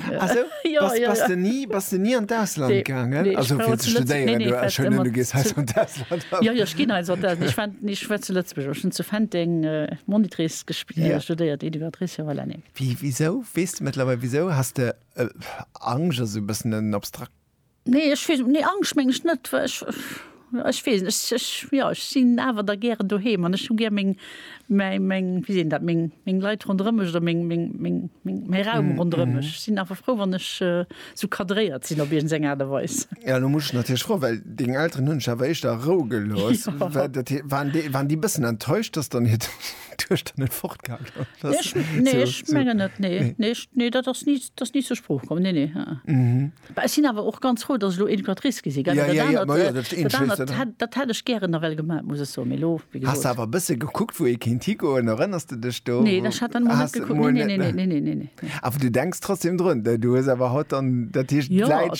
Bass de ni an d'Ausland gaangen? Ech war zu Lëtzebuerg, ech hunn zu Fenteng Monitrice gespillt, studéiert, Educatrice, voilà, nee. Wéi, wisou, weess de mëttlerweil wisou? Has de Angscht ass e bëssen en abstrakt. Nee ech weess nee Angscht meng ech net well ech ech weess ech ech jo ech sinn awer da gären doheem an ech hu gär meng mäi meng wéi seet een dat meng meng Leit ronderëm mech oder meng meng meng meng mäi Raum ronderëm mech. Ech sinn awer frou wann ech sou cadréiert sinn op iergend eng Aart a Weis. Jo elo muss ech natierlech froe well deng Elteren hunn dech awer éischter a Rou gelooss. War dat waren déi waren déi e bëssen enttäuscht dass dann hiert. net fort dat ass ni dat ni ze Spruch kom ne ne sinn awer och ganz froh, datt lo en Patrice gesi dat hat ech gären nawell gemat muss eso mé lo has awer bësse gekuckt wou e kind higoen erënners de dech do ne awer du denkst trotzdem drun du hues awer haut an dat hicht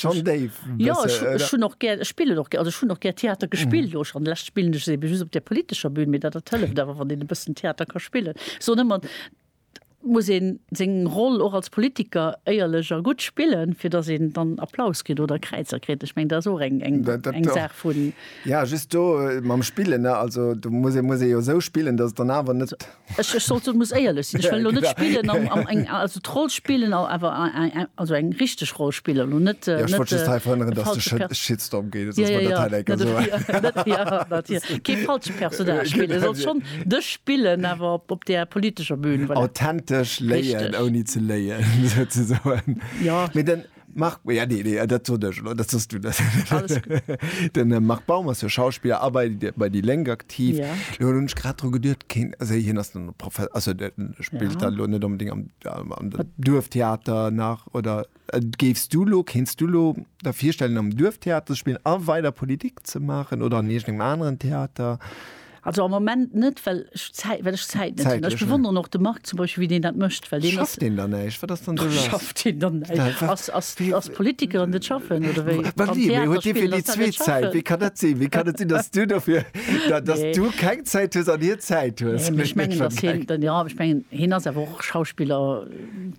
schon déif Jo, ech, ech hunn och gär, ech spillen och gär, also ech hunn och gär Theater gespillt. Lo schon lech spillen ech se eben just op der politescher Bühn, mee dat dat hëlleft awer, wann een e bëssen Theater ka spillen. Ech soen ëmmer, et muss een seng Roll och als Politiker éierlech a gutt spillen, fir datt een dann Applaus kritt oder Kräizer kritt. Ech meng, dat ass och eng, eng, Dat, dat, eng Saach vun. Ja, just do mam Spillen, ne, also do muss ee, muss ee jo esou spillen, datt et dann awer net. Ech ech sollt muss éierlech sinn. Ech wëll lo net spillen am am eng also d'Roll spillen a awer also eng richteg Roll spillen lo net net. Ech wollt just hei verhënneren, dass de Shit Shitstorm kriss. Soss war dat hei enker esou eng. Kee falsche Personnage spillen. Sollt schonn dech spillen awer op op där politescher Bühn. Authentesch léien ouni ze léien souzesoen. Jo. Mee den. Marc, ja, nee, nee, dat sot ech elo, dat sos du dat. Alles gutt. Den äh, Marc Baum ass jo Schauspieler a bei, de- bei déi Lénk aktiv. Ja. Lo hunn ech grad dru geduert, keen, also hien ass den Profe also der spielt Ja. ja. lo net unbedingt am, am, am Duerftheater nach oder äh, géifst du lo, kenst du lo der virstellen am Duerftheater ze spillen a weider Politik ze maachen oder an irgendeinem aneren Theater? Also am Moment net, well ech Zäit, well ech Zäit net hunn. Ech Zäitlech, ne? bewonneren och de Marc zum Beispill, wéi deen dat mécht, well deen ass, Schafft deen dann näischt? Wat ass dann do lass? schafft hien dann Da- näischt. wa- Ass, ass, wie- ass Politiker an net schaffen, oder wéi? Wa Am wéi? Mee Theater huet dee fir spillen, déi ass dat net zweet Zäit? Wéi schaffen? kann dat sinn? Wéi kann et sinn, datt du dofir, da- datt Nee. du keng Zäit hues an hien Zäit hues? Nee, mee ech mengen, datt hien, dann, ja, ech mengen, hien ass awer och Schauspiller,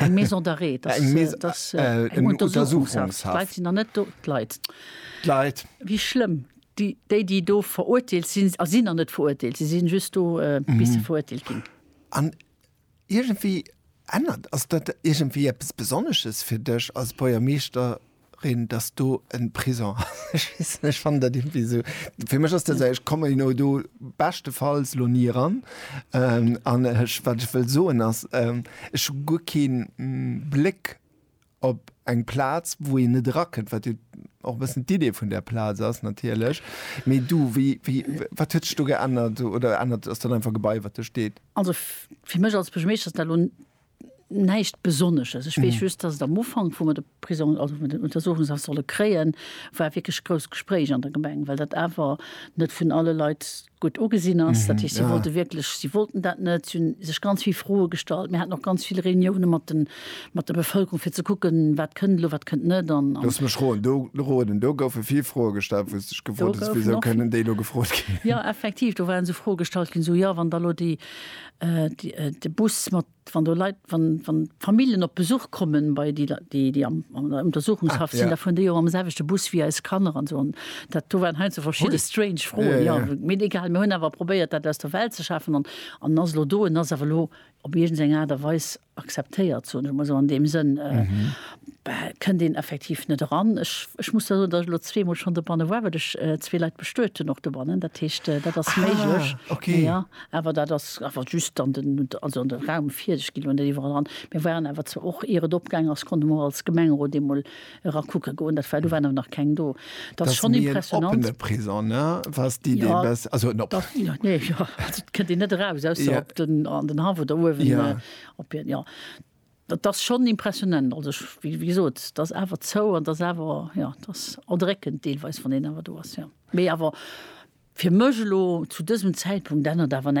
Eng Maison d'arrêt, dass, Eng Maison- dass äh, äh, eng eng Untersuchungshaft. Untersuchungshaft. D'Leit sinn dann net do, d'Leit. D'Leit. Wéi schlëmm. Déi, déi, déi do verurteelt sinn, a sinn nach net verurteelt, si sinn just do, äh, bis se verurteelt ginn. An iergendwéi ännert, ass dat iergendwéi eppes Besonnesches fir dech als Buergermeeschter, Rin, dass do en Prison ass. Ech weess net, ech fannen dat irgendwie sou, fir mech ass dat sou, ech kommen elo do beschtefalls lo ni eran. An ech, wat ech wëll soen ass, ech hu guer keen Bléck op eng Plaz, wou een net erakënnt, wat jo och e bëssen d'Idee vun där Plaz ass natierlech. Mee du, wéi, wéi, wat huet sech do geännert oder ännert, ass dat einfach e Gebai, wat do steet? Also fir mech als Buergermeeschter ass dat elo Näischt Besonnesches. Ech weess just, dass et am Ufank, wou mer de Prisong, also den Untersuchungshaft solle kréien, war wierklech grousst Gespréich an der Gemeng, well dat awer net vun alle Leit gutt ugesinn ass. Dat heescht, si wollte wierklech, si wollten dat net. Si hu sech ganz vill Froe gestallt. Mir haten och ganz vill Reunioune mat de, mat der Bevëlkerung, fir ze kucken, wat kënnt elo, wat kënnt net. An, an. Looss mech roen, do, roden, do goufe vill Froe gestallt, wou s de dech gefrot hues, Wisou kënnen déi elo gefrot ginn? Jo, effektiv, do waren esou Froe gestallt ginn, esou, Jo, wann da elo déi De Bus mat, wann do Leit, wann Familljen op Besuch kommen bei déi, déi an der Untersuchungshaft sinn, da fueren déi och mam selwechte Bus wéi eis Kanner an esou. Dat do waren heiansdo verschidde strange Froen, jo. Mee egal, mir hunn awer probéiert, dat aus der Welt ze schafen. An en ass elo do, en ass awer elo op iergend eng Aart a Weis Akzeptéiert, soen ech emol esou an deem Sënn, kënnt een effektiv net eran. Ech, ech muss da soen, datt ech elo zweemol schonn dobanne war, well ech zwee Leit bestuet hunn och dobannen. Dat heescht, dat ass méiglech. Ah, okay. Jo, awer dat ass awer just an den, also an de Raum vir. Ech ginn elo net iwwerall eran. Mir waren awer zwar och, ier et opgaangen ass, konnte mer och als Gemengerot eemol, era kucke goen, dat war, do waren awer nach keng do, dat ass schonn impressionnant. Dat ass méi en oppene Prisong, ne? Wars déi, déi e bess, also en oppene. Jo, jo, nee, jo, also et kënnt een net eraus, ausser op den, an den Haff oder uewen. Jo. Op hien, jo. Dat ass schonn impressionnant, also ech, wéi gesot, dat ass awer zou an dat ass awer, jo, dat ass erdréckend deelweis, wann een awer do ass, jo. Mee awer fir mech elo zu dësem Zäitpunkt ännert awer näischt.